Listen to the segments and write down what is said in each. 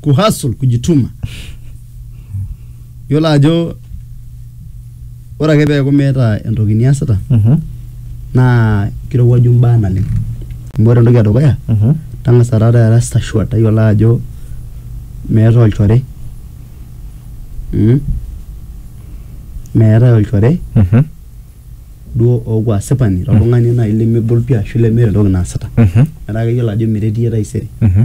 kuhasul kujituma yiolo ajo ore ake peeku meeta entoki niasita Mhm. naa kirowuaju imbaa naleng amu ore entoki edukuya Mhm. tang'asa taata era sure tayiolo ajo meetae olchore mm? meetae olchore Mhm. duo ooku asipani toltung'ani naaji lemegol pii ashu lemeeta entoki naasita Mhm. metaa keyiolo ajo meretie taisere Mhm.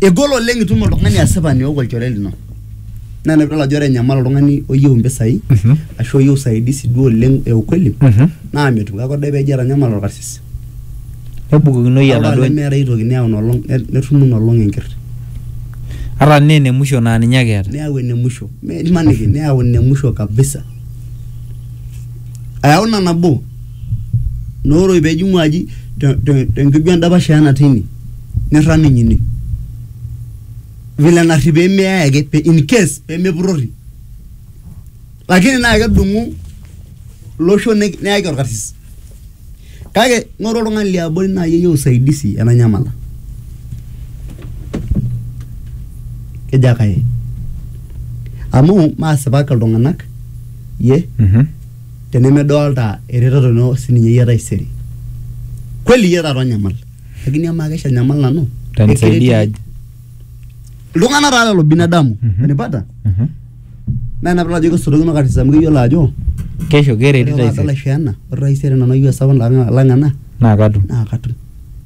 Egol oleng itum oltung'ani asipani ook olchore lino naa ina piidol ajo ore enyamal oltung'ani oyieu impisai Mhm. ashu oyieu usaidizi duo oleng e ukweli Mhm. naa metum kake ore peejo eitanyamala orkarsis nebukokinoyu ore oltung'ani enaduo lemeeta ae toki neyau ina olong ne- netumu ina olong enker ata naa ene musho naa ninye ake eeta neyau ene musho Me- imaniki neyau ene musho kabisa ayau ina nabo nooroi pejing'u aji te, te, tenkeju endapash eena tine nirrag ninye ine vile narri pemeyae ake in case pemepurrori lakini naa kedung'u loshon neyaki orkarsis kake ng'oru oltung'ani liabori naaji oyieu usaidizi enanyamala kejo ake aye amu maasipak iltung'anak iye. tenemedolta eretoto ino sininye iyie taisere kweli iyie taata onyamal lakini amaa kesha anyamal nanu Utanisaidia aje? iltung'anak taa lelo binadamu Mhm. unanipata Mhm. naa ina pidol ajo kesorokino katitin amu keyiolo ajo kesho kereti ore taisere laisho ena ore taisere nanu ayieu esapuk lang lang ena naa katum naa katum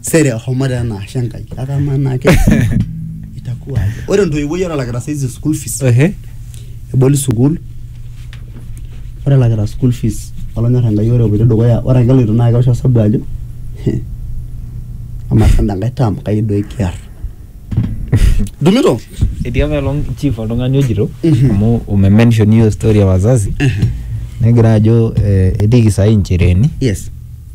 sere homo taa ena ashe enkai kake amaa naa ke itakuwa aje ore entoiwuoi ore elakita saizi school fees Ehe. eboli sukuul ore elakita school fees olonyor enkai ore epoito dukuya ore ake eloito naa kewosh osabu ajo "Heh, amaa sanda enkae term kai doi kiar dumito etii apa elong chief oltung'ani ojito Mhm. amu umemention hiyo story ya wazazi negira ajo eh, etiiki saai nchereeni yes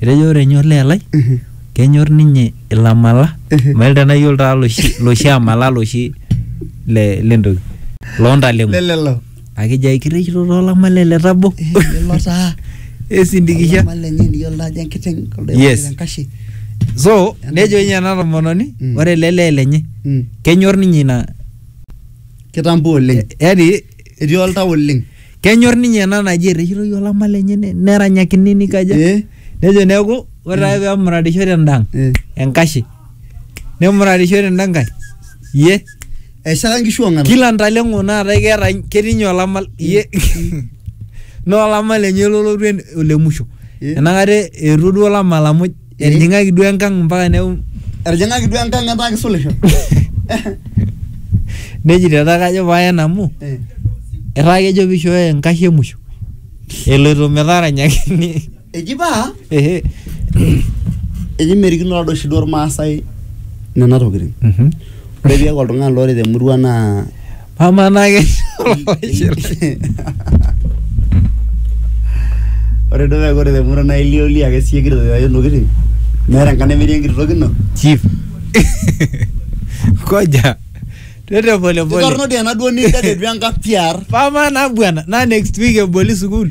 Etejo ore enyor le Elai kenyor ninye ilamala mail tenayiolo taa loshi loshi amala loshi le lentoki loontaleng'o lelelo akejo ai kirrikito toolamale le tabo lelo taa esindikisha Olama lenye niyiolo ajo enkiteng kuldo Yes. oipang'ita enkashe so nejo ninye ena tomononi Mm. ore ele lee lenye Mm. kenyor ninye ina kitambo oleng yani etii oltau oleng kenyor ninye ena naji erreshitoi olama lenye ne- neranyakini nikaja Eh, nejo neeku ore ake pemuratisho tendang eh. enkashe nemuratisho tenda nkae iye eshara nkishu ong'ata kila ntaleng'o naata keeta ketii ninye olama iye naa olama lenye lolotu en- olemusho Eh. enakata eetuo duo olama lamuj Etijing'aki duo enkang mpaka neu Etijing'aki duo enkang etaa kisulisho. nejito etaa kajo paen amu Eh. etaa kejo pishooyo enkashe emusho eloito metaranyakini Eji paa ehe eji merikino tadoi oshi duo Irmaasai nena tokitin. Mhm. Ore piaku oltung'ani loret emurua naa Amaa naa ke ore duo meeku ore temurua naa ilioli ake siye kitok ajo ntokitin meeta enkang nemetii enkiti toki ino chief. Koja. Twende pole pole. kitorrono dii ena duo nidadetu enkang piar Pama na bwana, na next week eboli sukul.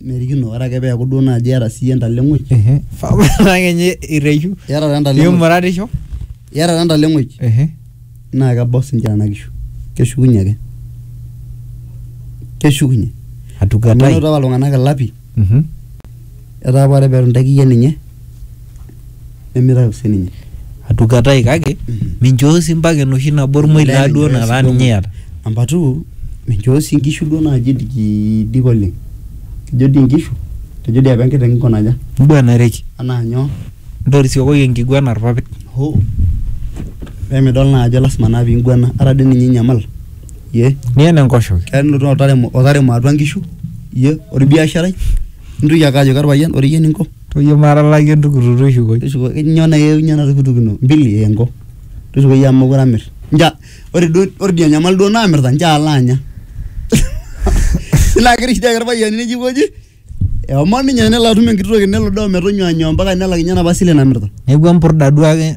merikino ore ake peeku duo naaji iyata siiyie entaleng'oi Ehe. Papa naa kenye irreshu. iyata taa entaleng'oi Imuratisho. iyata taa entaleng'oi Ehe. naa kebau sinche nena kishu keshukunye ake keshukunye amu Atukatai. enoto apa iltung'anak ilapi Mhm. etaa apa ore petu intaiki iyie ninye nemitau sininye atukatai kake minchoo sii mpaka enoshi nabo ormoi laa duo nataa ninye iyata number two minchoo sii inkishu duo naaji idikidik oleng kejo dii inkishu kejo dii apa enkiteng inko naja inguanareki anaa nyoo intorisiokoki enkiguana irpapit hoo pemidol naa ajo lasima naa pinguana ata dii ninye inyamal iyie niyen enkoshoke keya nilotu otaremo, otaremo atua inkishu iyie orbiasharai nintoki ake ajoki orpayian ore iyie eninko. Toyio matalaki entukutuk tushukoi. Tushuko nyoo na keunye ena tukutuk ino mbili engo tushukoi amu mokure amir nchoo ore duo ore idia nyamali duo namirta nchoo alo anya nilo agira shida orpayiani neji aikoji eomon ninye nelo atum enkiti toki nelo duo ometonyua anyoo mpaka nelak inye enapa sile namirta. Neeku empurda duo ake.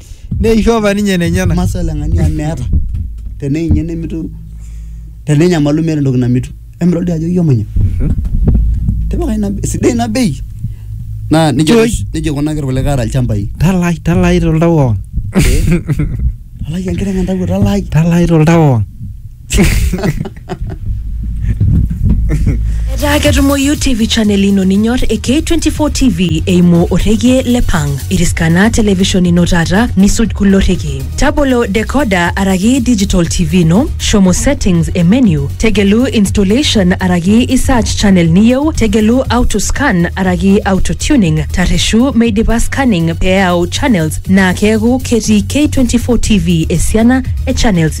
neisho apa ninye nenyena masaa ele ng'ani amu meeta teneinye nemitu tenenyamalu meeta entoki namitu emidol dii ajo iomanya tipika ina sidai ina bei naa nejia Toi. oshi- nejia ikunaki irkulikae aata ilchambai talai talai toltau kewon alai enkiteng entawuo talai talai toltau kewon etaa ketumoyu tv channel ino ninyor e k24 tv eimu orrekie le pang iriskana television ino taata nisuj kulo rrekie tabolo decoder araki digital tv ino shomo settings e menu tegelu installation araki i search channel niyieu tegelu auto scan araki auto tuning tarreshu meidipa scanning pee eyau channels naa keeku ketii k24 tv esiana e channels